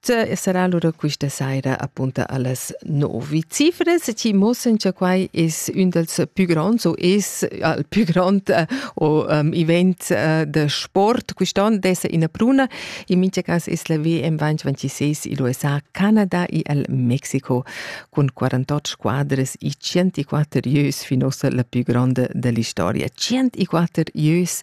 Tge sarà allura questa saira appunta allas novi cifres chi mossen cha quai es ün dals pü gronds o es al pü grond uh, o um, event uh, da sport quist'on d'esser ina pruna. In mincha cas es la VM 2026 in l'USA, Canada e al Mexico cun 48 squadres e 104 ieus fin ossa la pü gronda da l'istoria. 104 ieus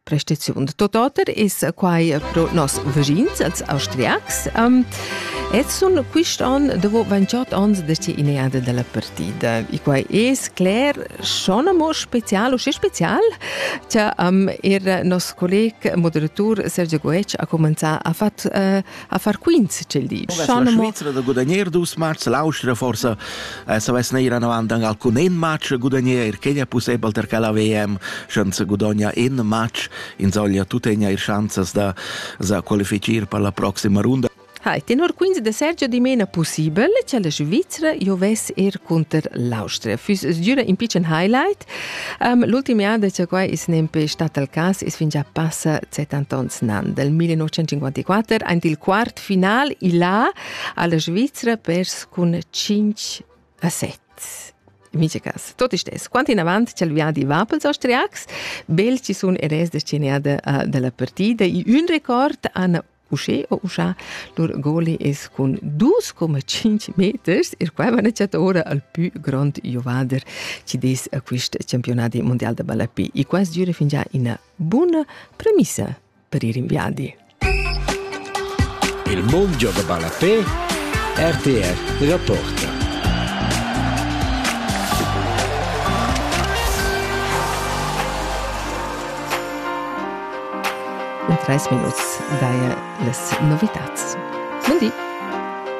prestaziun. Tot oter es quai pro nos vegins als austriacs. Um, et sun quist an dopo 28 ans da in eada della partida. E quai es cler schon amo special, usche special, che um, er nos colleg moderatur Sergio Goetsch ha comenzà, ha fatto uh, a far quints ch'el di. Schon Svizra da gudagnare dus matchs, l'Austria forse eh, savess neir anavant an alcun en match gudagnare, che è possibile per che la VM chance gudogna in match, insomma tu tegna ir chances da, da qualificare per la prossima runda. Hai, tenor quins de Sergio dimena possibel che la Svizzera jo vess er conter l'Austria. Füss es giura in pitschen highlight, Um, L'ultim an da che quai is nempe stat al cas is fin già passa 70 ans nan. Del 1954, aint il quart final, il a alla Svizzera pers cun 5 a 7. Mice cas. Tot istes, quant in avant c'è il viadi Vapels austriacs, belci sun eres destinada uh, della partida, i un record an uschè o uschè lur goli es cun dus coma tschinch meters, il qual maneggia ora al pü grond giovader chi dess a quist campionadi mundial da ballape. E quas gira fingià ina buna premissa per ir in viadi. Il mondo da ballape RTR rapporta. In treis minuts daja las novitads. Mundi!